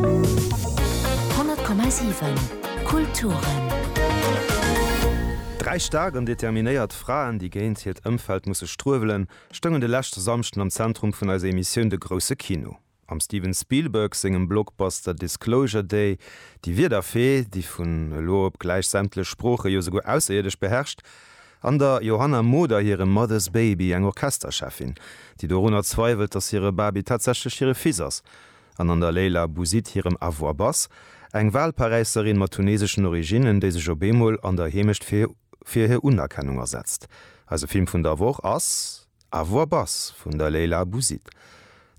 100,7 Kulturen. Dräi staark an determinéiert Fraen, déi géint hiert Ëmfeld musse struewelen, stoungen de leschte Samschden am Zentrum vun eiser Emissioun De grousse Kino. Am Steven Spielberg sengem Blockbuster Disclosure Day, déi Wierderfee, déi vun elo op gläich sämtlech Sproochen, jo souguer Ausserierdesch, beherrscht, an der Johanna Moder hirem Mother's Baby, eng Orchestercheffin, déi dorunner zweiwelt, datt hire Baby tatsächlech hire Fils ass, An an der Leila Bouzid hirem A voix basse, eng Walparäisserin mat tuneseschen Originnen, déi sech op eemol an der Heemecht fir fir hir Unerkennung asetzt. Eise Film vun der Woch ass A voix basse vun der Leila Bouzid.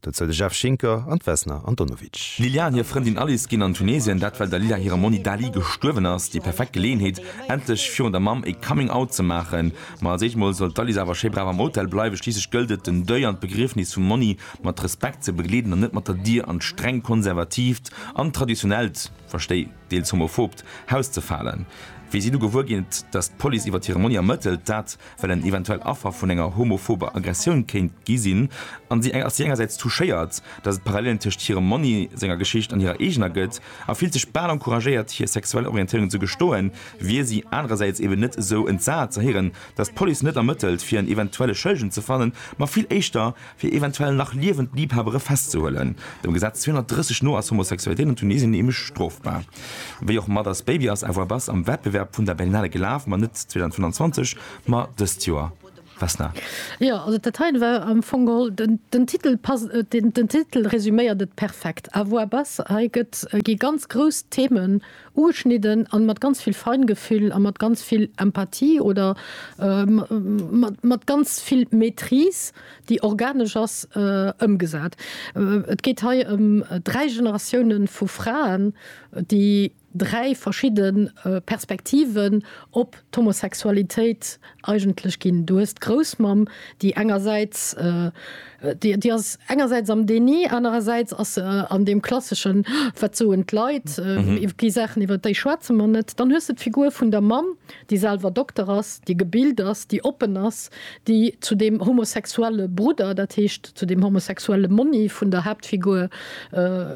Dozou de Jeff Schinker an d'Vesna Antonovic. D'Lilja an hir Frëndin Alice ginn an Tunesien, dat well der Lilja hire Monni Dali gestuerwen ass. Déi perfekt Geleeënheet, endlech virun der Mamm ee Coming Out ze maachen. Ma als éischt mol soll d'Alice awer schéi brav am Hotel bleiwen, schliisslech gëllt et, den Deuil an d'Begriefnis vum Monni mat Respekt ze begleeden an net mat der Dier an d'streng konservatiivt an traditionellt, verstéi deels homophobt, Haus ze falen. Wéi si du gewuer ginn, datt d'Police iwwert hire Monni ermëttelt, dat well en eventuell Affer vun enger homophober Aggressioun kéint gi sinn, ass si engersäits touchéiert, datt et Parallelen tëscht hirem Monni senger Geschicht an hirer eegener gëtt a fillt sech bal encouragéiert hir sexuell Orientéierung ze gestoen, wier si anerersäits eben net esou entsat ze héieren, datt d'Police net ermëttelt fir en eventuelle Schëllegen ze fannen, ma vill éischter, fir eventuell nach liewend Liebhabere festzehuelen. Dem Gesetz 230 no ass Homosexualitéit an Tunesien nämlech strofbar. Wéi och mat As Baby ass Avoir Bas am Wettbewerb vun der Berlinale gelaf, ma net 2025, ma dëst Joer. Vesna. Jo, also dat heien war am Fong geholl, den Titel passt, den Titel resuméiert et perfekt, Avoir Bas. Hei gëtt, gi ganz grouss Themen Ugeschnidden an mat ganz vill Feingefühl a mat ganz vill Empathie oder mat ganz vill Maîtrise, déi organesch ass, ëmgesat. Et geet hei ëm dräi Generatiounen vu Fraen, déi dräi verschidde Perspektiven op d'Homosexualitéit Eigentlech ginn, du hues d'Groussmamm, déi engersäits, déi ass engersäits am Déni, anerersäits ass se an deem klasseschen, wat soen d'Leit, iwwer déi Saachen, iwwer déi schwätze mer net. Dann hues de d'Figur vun der Mamm, déi selwer Dokter ass, déi gebilt ass, déi oppen ass, déi zu deem homosexuelle Brudder, dat heescht zu deem homosexuelle Monni vun der Haaptfigur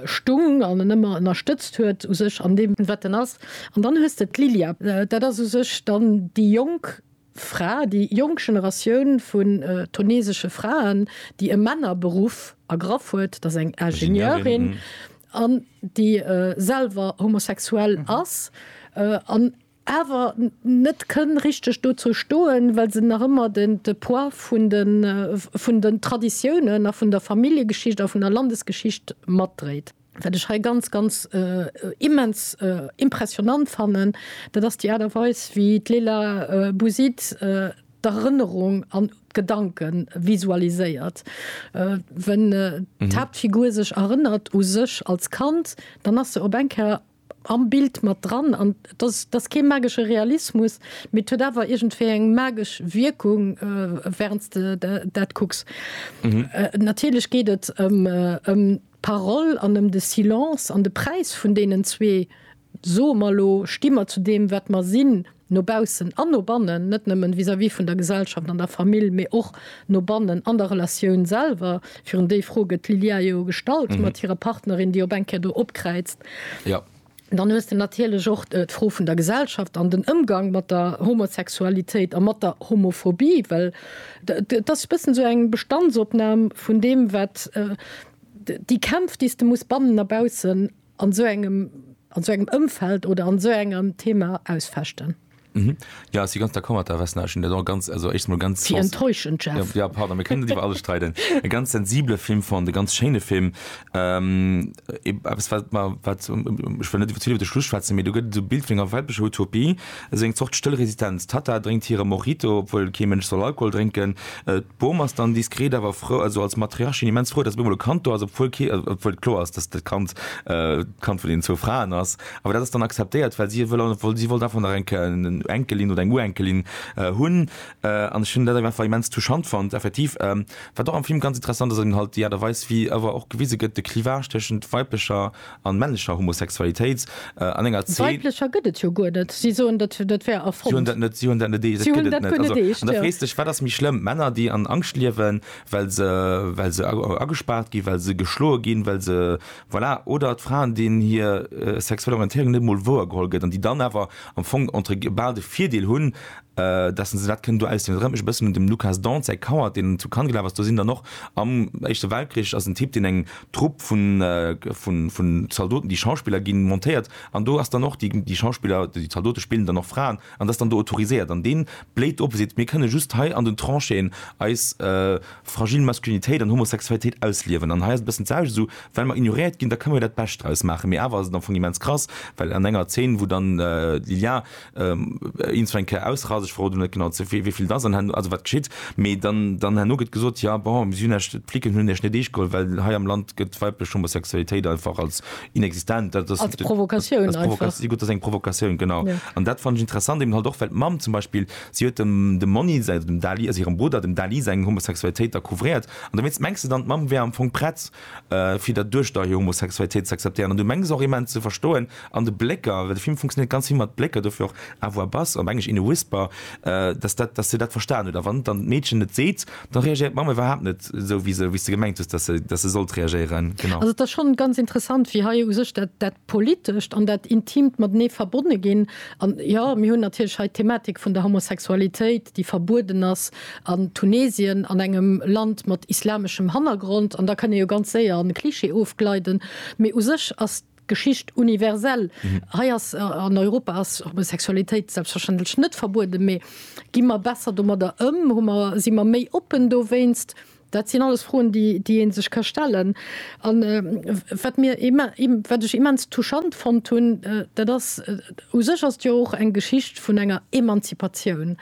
stung an en ëmmer ënnerstëtzt huet u sech an deem, wat en ass. An dann hues de d'Lilia. Dat ass u sech dann déi jonk Fra, déi jonk Generatioun vun tunesesche Fraen, déi e Männerberuff ergraff huet. Et ass eng Ingenieurin an déi selwer homosexuell ass an awer net kënn richteg dozou stoen, well se nach ëmmer de Poids vun den Traditiounen a vun der Familljegeschicht a vun der Landesgeschicht matdréit. Wat ech hei ganz, ganz immens impressionant fannen, dat ass déi Aart a Weis, wéi d'Leila Bouzid d'Erënnerung an d'Gedanke visualiséiert. Wenn d'Haaptfigur sech erënnert u sech als Kand, dann ass se op eng Kéier am Bild mat dran an et ass, et ass kee magesche Realismus, mee et huet awer iergendwéi eng magesch Wierkung, während s de dat kucks. Natierlech geet et ëm d'Parole an ëm de Silence an de Präis vun deenen zwee, soe mer elo, sti mer zu deem, wat mer sinn, No baussen an no bannen, net nëmmen vis-à-vis vun der Gesellschaft an der Famill, mee och no bannen an der Relatioun selwer. Virun déi Fro gëtt d'Lilia jo gestallt mat hirer Partnerin, déi op eng Kéier do opkräizt. Dann hues de natierlech och d'Fro vun der Gesellschaft an den Ëmgang mat der Homosexualitéit a mat der Homophobie, well et ass e bëssen esou eng Bestandsopnam vun deem, wat déi Kämpf, déi s de muss bannen a baussen an esou engem an esou engem Ëmfeld oder an esou engem Thema ausfechten. Jo, si ganz d'accord mat der Vesna. Ech hunn dat och ganz, also éischt mol ganz. Wéi enttäuschend, Jeff. Jo, pardon, mir kënnen net iwwer alles streiden. E ganz sensibele Film fonnt, e ganz schéine Film. Eppes wat mer, wat, ech wëll net iwwer vill iwwer de Schluss schwätzen, mee do gëtt et esou e Bild vun enger weltlecher Utopie, esou eng Zort stëll Resistenz. D'Tatta drénkt hire Mojito, obwuel kee Mënsch soll Alkohol drénken. D'Bom ass dann diskret awer frou, also als Matriarchin immens frou, datt op eemol e Kand do ass, obwuel kee, obwuel et kloer ass, datt dat Kand d'Kand vun deenen zwou Fraen ass. Awer dat ass dann akzeptéiert, well si wëll, wëll, si wollt einfach nach eng Enkelin oder eng Urenkelin hunn. An ech hunn dat einfach immens touchant fonnt, effektiv. Wat och am Film ganz interessant ass, ass eben halt déi Aart a Weis, wéi awer och gewise gëtt, de Clivage tëschent weiblecher An männlecher Homosexualitéit an enger Zeen. Weiblecher gëtt et jo guer net. Si soen, dat wär erfonnt. Si hunn dat net. Si hunn dat net eescht. Si hunn dat guer net eescht. An da frees dech, wat ass méi schlëmm? Männer, déi an Angscht liewen, well se, well se agespaart ginn, well se geschloe ginn, well se, voilà, oder d'Fraen, deenen hir sexuell Orientéierung net emol wouer geholl gëtt an déi dann awer am Fong entre guil bal de Virdeel hunn, dass se dat kënnen do ausliwen. Et erënnert mech e bëssen un dem Lukas Dont säi Coward, deen zu Cannes gelaf ass. Do sinn dann och am Éischte Weltkrich ass en Typ, deen eng Trupp vun Zaldoten, déi Schauspiller gi montéiert an do ass dann och déi Schauspiller, déi Zaldote spillen dann och Fraen an dat ass dann do autoriséiert an dee bléit op a seet, mir kënne just hei an den Tranchéen eis fragile Masculinitéit an Homosexualitéit ausliewen an hei ass et e bëssen d'selwecht, esou well mer ignoréiert ginn, da kënne mir dat Bescht draus maachen. Mee awer ass et am Fong immens krass, well an enger Zeen, wou dann d'Lilja. Eens eng Kéier ausrasen, ech verroden net genau zu wéi vill dass an herno, also wat geschitt, mee dann dann herno gëtt gesot, ja bon si hunn Iech, d'Flicken hunn Iech net eescht geholl, well hei am Land gëtt d'weiblech Homosexualitéit einfach als inexistent, dat ass als Provokatioun einfach, als Provokatioun, si gutt, dat ass eng Provokatioun, genau. An dat fannen ech interessant, eben halt och well d'Mamm zum Beispill, si huet dem dem Monni säi, also dem Dali, also hirem Brudder, dem Dali seng Homosexualitéit da couvréiert an dowéinst mengs de dann d'Mamm wär am Fong prett fir dat duerch der Homosexualitéit ze akzeptéieren an du mengs och immens ze verstoen an de Blécker, well de Film funktionéiert ganz vill mat Blécker, dofir och à voix basse, op Englesch in a whisper, dass dat, dass se dat verstan huet a wann dann d'Meedchen et seet, da reagéiert d'Mamm iwwerhaapt net esou, wéi se, wéi s de gemengt hues, dass se, dass se sollt reagéieren. Genau. Also et ass schonn ganz interessant, wéi hei u sech dat, dat Politescht an dat Intimt matenee verbonne ginn. An jo, mir hunn natierlech hei d'Thematik vun der Homosexualitéit, déi verbueden ass, an Tunesien an engem Land mat islameschem Hannergrond, an da kann ee jo ganz séier an e Klischee ofgleiden, mee u sech ass d'Geschicht universell. Hei ass, an Europa ass Homosexualitéit selbstverständlech net verbueden, mee gi mer besser domadder ëm, hu mer, si mer méi oppen dowéinst? Dat sinn alles Froen, déi ee sech ka stellen. A wat ech immens touchant fonnt hunn, dat ass, U sech ass et jo och eng Geschicht vun enger Emanzipatioun,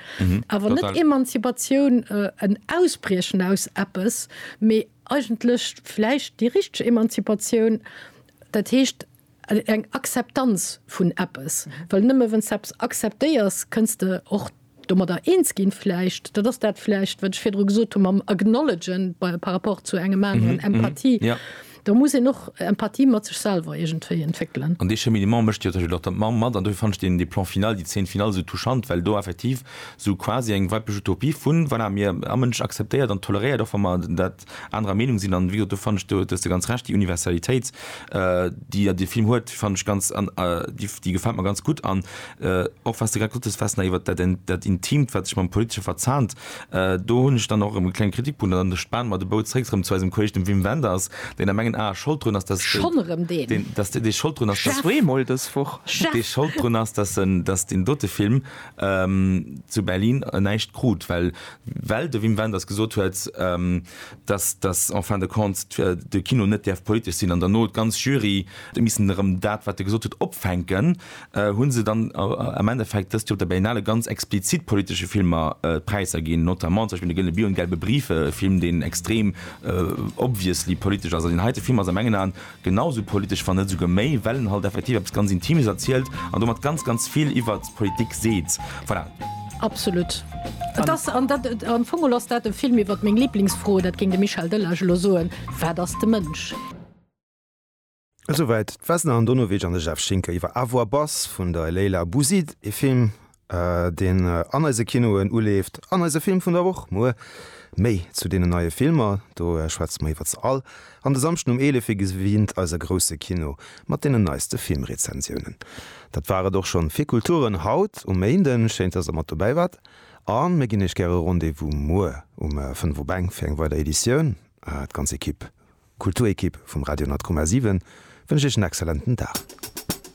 awer net Emanzipatioun, en Ausbriechen aus eppes, mee eigentlech vläicht déi richteg Emanzipatioun, dat heescht, Eng Akzeptanz vun eppes. Well nëmme wann s de eppes akzeptéiers, kënns de och domadder eens ginn vläicht. Dat ass dat vläicht, wat ech virdru gesot hu mam Acknowledgen par rapport zu engem aneren, Empathie. Do muss een och Empathie mat sech selwer iergendwéi entwéckelen. An dee Cheminement mécht jo tëschent och der Mamm mat. An dofir fannen ech deen, dee Plan final, déi Zeen final esou touchant, well do effektiv esou quasi eng weiblich Utopie vun, voilà, mir, a Mënsch akzeptéiert an toleréiert, och wa mer dat anerer Meenung sinn. An wéi gesot, do fannen ech, do hues de ganz Recht, déi Universalitéit, déi jo de Film huet, fannen ech ganz, déi gefält mer ganz gutt. An och wat s de grad gesot hues, Vesna, iwwert dat, dat Intimt, wat sech mam Politesche verzahnt, do hunn ech dann och erëm e klenge Kritikpunkt. An da spanen mer de Bou zréck erëm zu eisem Kolleg, dem Wim Wenders, deen a mengen Ae Schold drun ass, dass, Schonn erëm deen? dass dee Schold drun ass, dass. Zweemol dës Woch. Chef! Dee Schold drun ass, dass en, dass deen dote Film zu Berlin näischt krut, well well de Wim Wenders gesot huet, dass, dass en fin de compte de Kino net däerf politesch sinn, an dann no d'ganz Jury huet missen erëm dat, wat e gesot huet, opfänken, hu se dann am Endeffekt dëst Joer op der Berlinale ganz explizit politesche Filmer d'Präisser ginn, notamment zum Beispill De gëllene Bier und Gelbe Briefe, e Film, deen extrem obviously politesch ass. An deen heite Film ass a mengen Aen Genau esou politesch, wann net esouguer méi, well en halt effektiv eppes ganz Intimes erzielt an domat ganz, ganz vill iwwert d'Politik seet. Voilà. Absolut. Et ass, an dat, am Fong ass dat e Film iwwert meng Liblingsfro, dat géing de Michel Delage elo soen, Wat ass de Mënsch? Esouwäit d'Vesna Andonovic an de Jeff Schinker iwwer Avoir Bass vun der Leila Bouzid, e Film, deen an eise Kinoen uleeft, an eise Film vun der Woch muer. Méi zu deenen neie Filmer, do schwätze mer iwwer se all an de Samschden um 11 wéi gewinnt eise grousse Kino mat deenen neiste Filmrezensiounen. Dat war et och schonn fir Kulturen haut um Méinden. Schéin dass der mat dobäi waart a mir ginn iech gäre Rendez-vous muer um 5 op eng fir eng weider Editioun. D'ganz Ekipp, Kulturekipp vum Radio Nord-Komm A7 wënscht iech en exzellenten Dag.